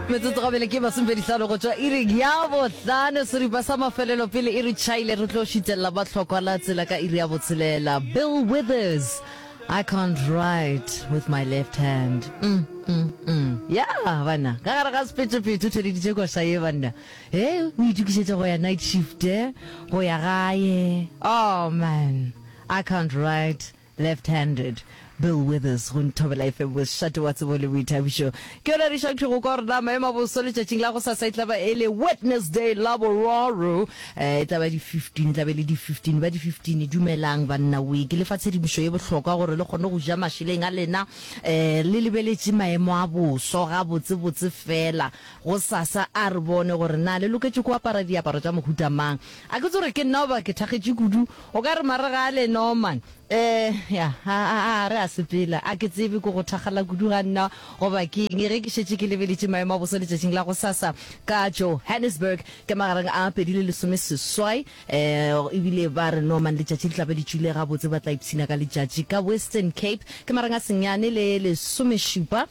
metsotso gabele ke masomepedisano go tšwa iring ya bohlano seripa sa mafelelo pele e re chaile re tlo šitelela ba tlhokwa la tsela ka iri ya botshelela bill withers i can't write with my left hand mm, mm, mm. ya yeah, banna ka gare ga sepetšepetše o theleditše koša ye banna e eh, o itokišetša go ya night shift eh? go ya gae oh man i can't write Left handed, Bill Withers, go nthobela efe bošate wa tsebo le boithabišo. Ke yona re šakthwego kwa gore na maemo a boso letšatšing la gosasa e tla ba e le Wednesday la boraro, eh, e tla ba di 15, e tla ba e le di 15 ba di 15. Dumelang banna, we ke le fa tshedimošo ye bohlokwa gore le kgone go ja mašeleng a lena, eh, le lebeletše maemo a boso gabotse botse fela gosasa, a re bone gore na le loketše go apara diaparo tša mohuta mang. A ke tsore ke nna goba ke thakgetše kudu O ka re Maregale, Norman. Ee, ya, a, a, a re a sepela. A ke tsebe ke go thakgala kudu ga nna goba ke eng. Ge ke šetše ke lebeletše maemo a bosa letšatšing la gosasa ka Johannesburg ka magareng a pedi le lesome seswai, ee, ebile ba re Norman letšatši le tla be le tšwile gabotse, ba tla ipshina ka letšatši ka Western Cape ka marang a senyane le lesomešupa.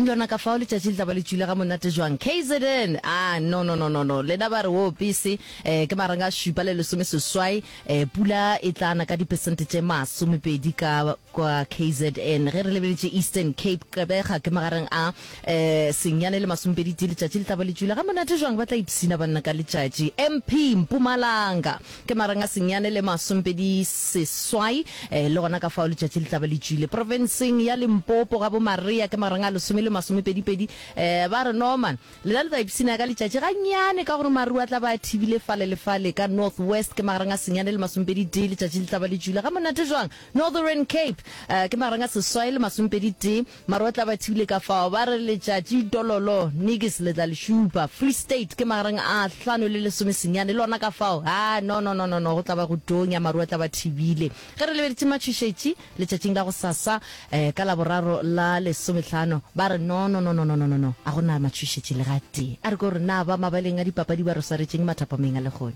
Ntlwana ka fao letšatši le tla ba le tšwile ga monate jwang kzn ah no no no no no lena ba re woo pese eh ke marang a šupa le lesome seswai eh pula e tla na ka dipesente tše masomepedi ka kwa kzn ge re lebeletše Eastern Cape Gqebega ke magareng a eh senyane le masomepedi tee letšatši le tla ba le tšwile ga monate jwang ba tla ipshina banna ka letšatši MP Mpumalanga Ke marang a senyane le masompedi seswai, ee, le gona ka fao letšatši le tla ba le tšwile. Profenseng ya Limpopo, gabo Maria, ke marang a lesome le masomepedipedi. Ee, ba re, Norman, lena le tla ipshina ka letšatši gannyane ka gore maru a tla ba a thibile fale le fale. Ka North West, ke marang a senyane le masomepeditee, letšatši le tla ba le tšwile. Gamonate jwang! Northern Cape, ee, ke marang a seswai le masomepeditee. Marotla ba thibile ka fao ba re letšatši tololo nigis le tla le šupa. Free State ke magareng a hlano le lesome senyane le ona ka fao haa no no no no no go tla ba go tonya Marotla ba thibile. Ge re lebeditše matšhošetši letšatšing la gosasa eh ka laboraro la lesomehlano ba re no no no no no no no no a go na matšhošetši le ga tee. A re ko re na ba mabaleng a dipapadi ba re swaretšeng mathapameng a lehono.